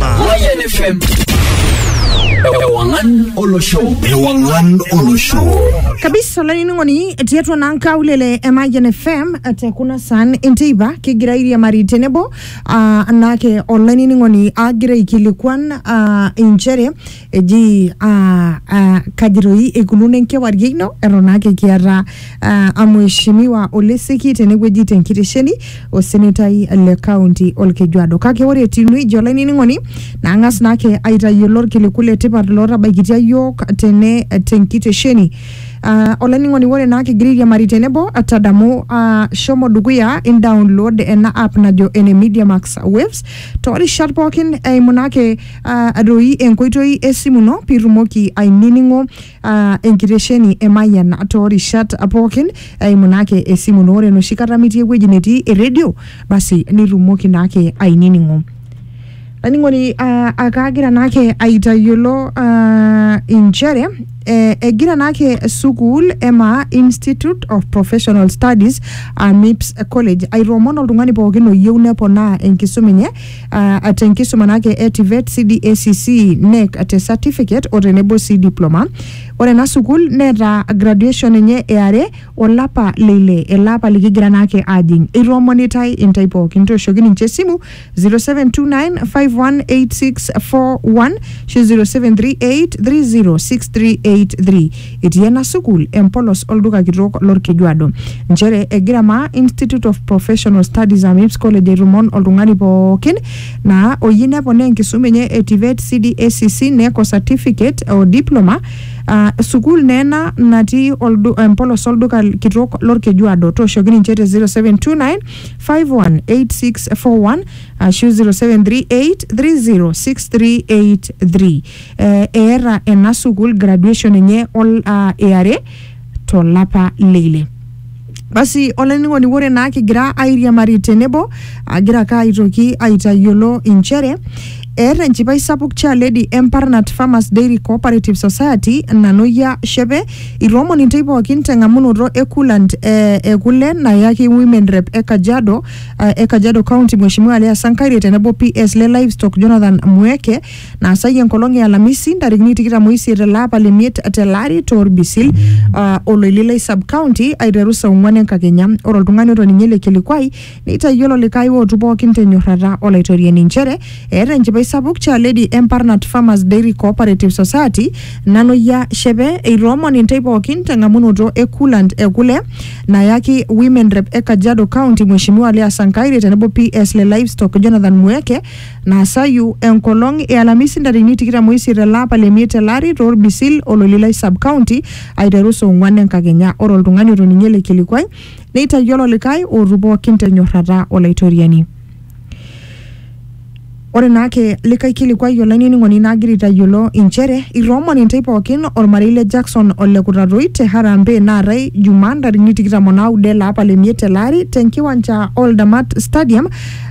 Mayan FM. Ewangan Olosho. Ewangan Olosho. kabisa olainining'oni etii atua naa nkaulele e Mayian FM te kuna saan enteipa kigira airiamari tenebo ah, anaake olainining'oni agira aikilikuan ah, inchere eji ah, ah, kaji doi eikununo enkewarie ino eton ake kiata ah, amheshimiwa oleseki tenewueji tenkitesheni osenetai le kaunti olkejuado kake ore etiu neija olainining'oni nang'as naake aitayiolo irkiliku le tipat lootabaikitia yiok tene tenkitesheni Ah, olainining'oni ore naa kigira airiamari tenebo tadamu ah, shomo dukuya in download ena app najo ene media max waves toorishat pookin eimu naake uh, doi enkoitoi esimu ino pitumoki ainining'o uh, enkitesheni e Mayian toorishat pookin eimu naake esimu ino ore enoshi kata mitii ewueji netii eredio basi nitumoki naake ainining'o laining'oni uh, akaagira naake aitayiolo uh, inchere eh, egira naake sukuul ema institute of professional studies uh, mips college aitoomon oltung'ani pookin oyieu neponaa enkisuma enye uh, te nkisuma naake e TVET, CDACC, NEC te certificate o tenebo sii diploma. Ore ena sukuul neeta graduation enye e are olapa le ile ele apa likigira naake aajing. Eitoomonitae intae pookin tooshoki ninche esimu 0729518641 ashu 0738306383. Etii ena sukuul empolos olduka kitok lolkejuado nchere egira maa Institute of Professional Studies Amips College aitmon oltung'ani pookin naa oyieu neponaa enkisuma enye e TVET, CDACC, NECO Certificate o Diploma aa sukuul naa ena natii oldu, empolos olduka kitok lolkejuado. Tooshoki ninche te 0729 518641 ashu 0738 306383. Eh, eeta ena sukuul graduation enye ol- ah, eare tolapa leile basi olainining'oni ore naa kigira airiamari tenebo agira ake aitoki aitayiolo inchere eeta enchipai sapuk Chair Lady Emparnat Farmers Dairy Cooperative Society Nanoyia Shepe itoomon intae pookin teng'amunoto e coolant eh, e kule nayaki women rep e Kajiado eh, e Kajiado County Mheshimiwa Leah Sankaire tenebo PS le livestock Jonathan Mweke naasai enkolong e Alamisi ntarikini tikitam oisiet ele apa le miet tele ari torbisil uh, oloililai sub county aiteru saa ong'uan enkakenya ore oltung'ani otoning'ie ele kilikuai neitayiolo likae ootu pookin tenyorrata olaitoriani inchere eeta enchipai sapuk chaledi emparnat farmers dairy cooperative society naloyia shepe eitoomon intae pookin teng'amunoto e coolant e kule nayaki women rep e kajiado county mheshimiwa Leah Sankaire tenebo PS le livestock Jonathan Mueke Naasayu enkolong e Alamisi ntarikini tikitam oisiet ele apa le miet ele ari too Rbisil o Lolilai sub county aiteru saa ong'uan enkakenya. Ore oltung'ani otoning'ie ele kilikuai neitayiolo likae ootu pooki te nyorrata o Laitoriani. Ore naa ake likae kilikuai olainining'oni naagira aitayiolo inchere itoomon intae pooki olmarei le Jackson o le Kutatoi te harambee naatae Jumaa ntarikini tikitam o naudo ele apa le miet ele ari te nkiwanja o Ldamat stadium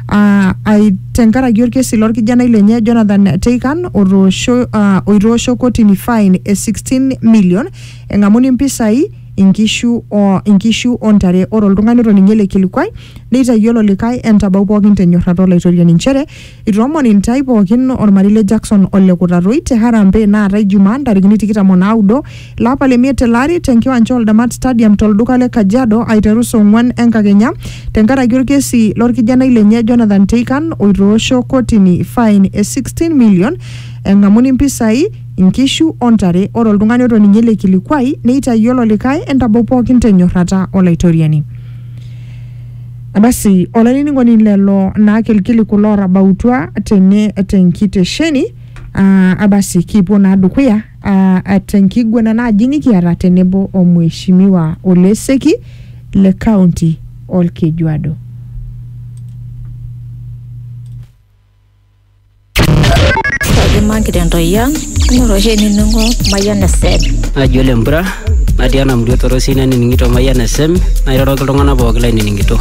ah, ai- tenkaraki orkesi lorkijanai lenye Jonathan Teikan otoosho ah, oitoosho kotini fine e 16 million eng'amuni mpisai inkishu o inkishu ontare ore oltung'ani otoning'ie ele kilikuai neitayiolo likae entabau pookin tenyorrata olaitoriani nchere itoomon intae pookin ormarei le Jackson ole Kutatoi te Harambee naatae Jumaa ntarikini tikitam o naudo Lapa le miet tele ari tenkiwanja o Damat Stadium tolduka le Kajiado aiteru saa ong'uan enkakenya tenkaraki olkesi lorkijanai lenye Jonathan Teikan oitoosho kotini fain e 16 million eng'amuni mpisai, nkishu o ntare. Ore oltung'ani otoning'ie ele kilikuai neitayiolo likae entabau pookin tenyorrata Olaitoriani. Basi olainining'oni lelo naake ilkiliku loorabautua tene tenkitesheni. Ah, basi kipuo naa dukuya uh, tenkiguana naaji nikiata tenebo o Mheshimiwa Oleseki le kaunti Olkejuado. Kaji magira entoyia, inoto oshi enining'o mayian esed. Ajo lempura natii ena murua torosi nanining'ito Mayian FM nairoroki iltung'anak pooki lainining'ito.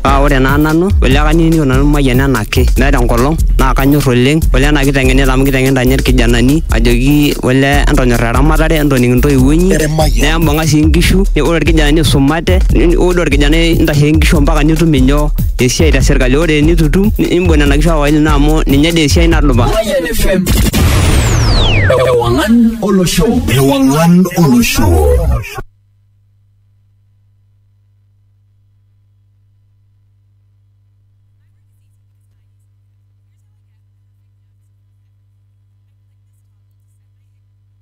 Paa ore naa nanu ole kanining'ito nanu Mayian enake meeta enkolong naa kanyor oleng ole ena kiteng'enita amu kiteng'enita ninye irkijanani ajoki ole entonyor eramatare entoning intoiwuo inyi nembung'a sii inkishu ore irkijanani isumate ore orkijanai intashe inkishu ompaka nitum inyoo esiai te sirkali ore enitu itum nimbung nena kishu aawa ino amu ninye dee esiai nadupa. Mayian FM. Ewangan olosho ewang'an olosho